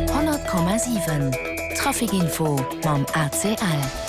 100,7 Trafic-Info mam ACL.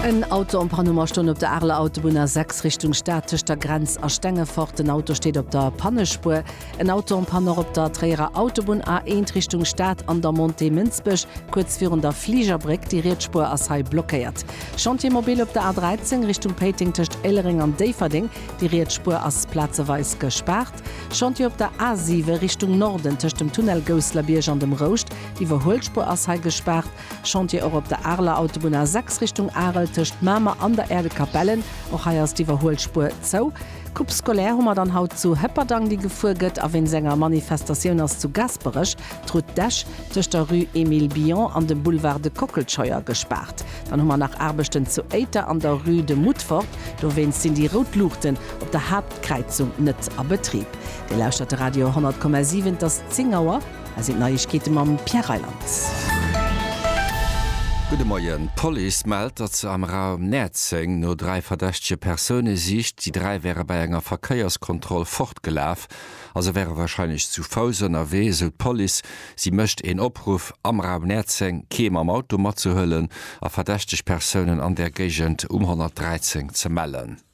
En Auto en panne um a stoung op der Areler Autobunn A 6 Richtung Stad tëscht der Grenz a Stengefort. En Auto steet op der Pannespuer. En Auto en panne och op der Tréierer Autobunn A 1 Richtung Stad an der Montée Mënsbech, kuerz virun der Fligerbréck. Déi riets Spuer ass hei blockéiert. Chantier mobile op der A 13 Richtung Péiteng tëscht Éilereng an Déifferdeng. Déi riets Spuer ass plazeweis gespaart. Chantier op der A7 Richtung Norden tëscht dem Tunnel Gousslerbierg an dem Rouscht, d'Iwwerhuelspuer ass hei gespaart. Chantier och op der Areler Autobunn A6 Richtung Arel tëscht Mamer an der Aire de Capellen, och hei ass d'Iwwerhuelspuer zou. Coupe scolaire hu mer dann haut zu Hëpperdang déi gefuer gëtt a wéinst enger Manifestatioun ass zu Gasperech d'Route d'Esch tëscht der Rue Emile Bion an dem Boulevard de Kockelscheuer gespaart. Dann hu mer nach Aarbechten zu Éiter an der Rue de Moutfort, dowéinst sinn déi rout Luuchten op der Haaptstrass D'Kräizung net a Betrib. Dir lauschtert de Radio 100,7, et ass 10 Auer. Hei sinn d'Neiegkeete mam Pierre Reyland. Gudde Moien. D'Police mellt, datt se am Raum Näerzeng no dräi verdächtege Persoune sicht. Déi dräi wäre bei enger Verkéierskontroll fortgelaf a se wäre warscheinlech zu Fouss ënnerwee, esou d'Police. Si mécht een Opruff, am Raum Näerzeng kee mam Auto matzehuelen a verdächteg Persounen an där Géigend um 113 ze mellen.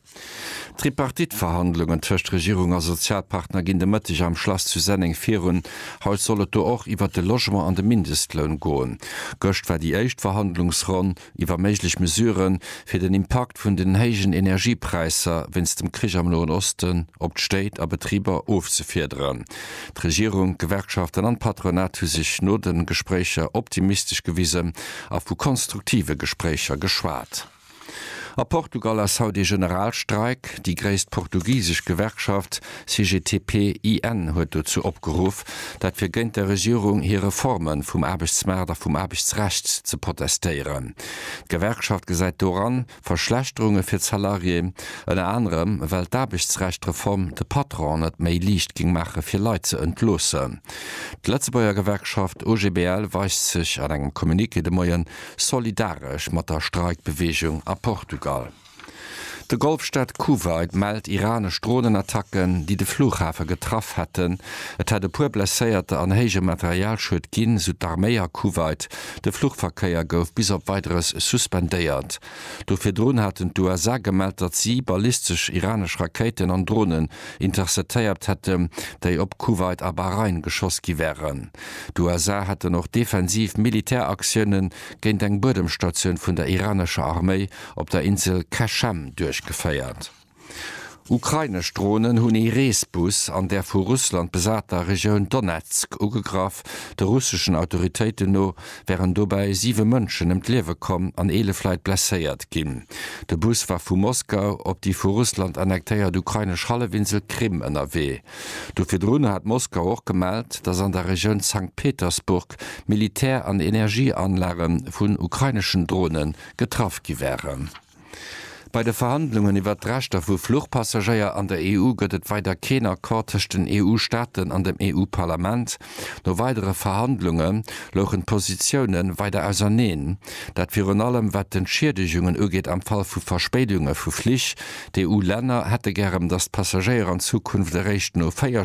D'Tripartite-Verhandlungen tëscht Regierung a Sozialpartner ginn de Mëtteg am Schlass zu Senneng virun. Haut soll et do och iwwert de Logement an de Mindestloun goen. Gëscht war déi éischt Verhandlungsronn iwwer méiglech Mesurë fir den Impakt vun den héijen Energiepräisser wéinst dem Krich am Noen Osten op d'Stéit a Betriber ofzefiederen. D'Regierung, d'Gewerkschaften an d'Patronat hu sech no de Gespréicher optimistesch gewisen a vu konstruktive Gespréicher geschwat. A Portugal ass haut ee Generalstreik. Déi gréisst portugisesch Gewerkschaft CGTP-IN huet dozou opgeruff, dat fir géint der Regierung hir Reforme vum Aarbechtsmaart a vum Aarbechtsrecht ze protestéieren. D'Gewerkschaft gesäit doran Verschlechterunge fir d'Salarié, ënner anerem well d'Aarbechtsrecht-Reform de Patron et méi liicht géing maache fir Leit ze entloossen. D'Lëtzebuerger Gewerkschaft OGBL weist sech an engem Communiqué de Moien Solidaresch mat der Streikbeweegung a Portugal, de Golfstaat Kuwait mellt iranesch Dronenattacken, déi de Flughafe getraff hätten. Et hätt e puer Blesséierter an héije Materialschued ginn, esou d'Arméi a Kuwait. De Fluchverkéier gouf bis op Weideres suspendéiert. Do virdrun haten d'USA gemellt, datt si ballistesch iranesch Rakéiten an Dronen intercetéiert hätten, déi op Kuwait a Bahrain geschoss gi wären. D'USA hätten och defensiv Militäraktioune géint eng Buedemstatioun vun der iranescher Arméi op der Insel Qeshm duerchgeféiert. Ukrainesch Dronen hunn ee Reesbus an der vu Russland besater Regioun Donezk ugegraff, de russeschen Autoritéiten no wären dobäi siwe Mënschen ëm d'Liewe komm an eelef Leit blesséiert ginn. De Bus war vu Moskau op déi vu Russland annektéiert ukrainesch Hallefinsel Krim ënnerwee. Do virdrun hat Moskau och gemellt, datt an der Regioun Sankt Petersburg Militär an Energieanlage vun ukraineschen Drone getraff gi waren. Bei de Verhandlungen iwwert d'Rechter vu Fluchpassagéier an der EU gëtt et weider keen Accord tëscht den EU-Staaten an dem EU-Parlament. No weidere Verhandlunge louchen d'Positioune weider auserneen, dat virun allem wat d'Entschiedegunge ugeet am Fall vu Verspéidunge vu Flich. D'EU-Länner hätte gärem, datt d'Passagéier an Zukunft eréischt no 4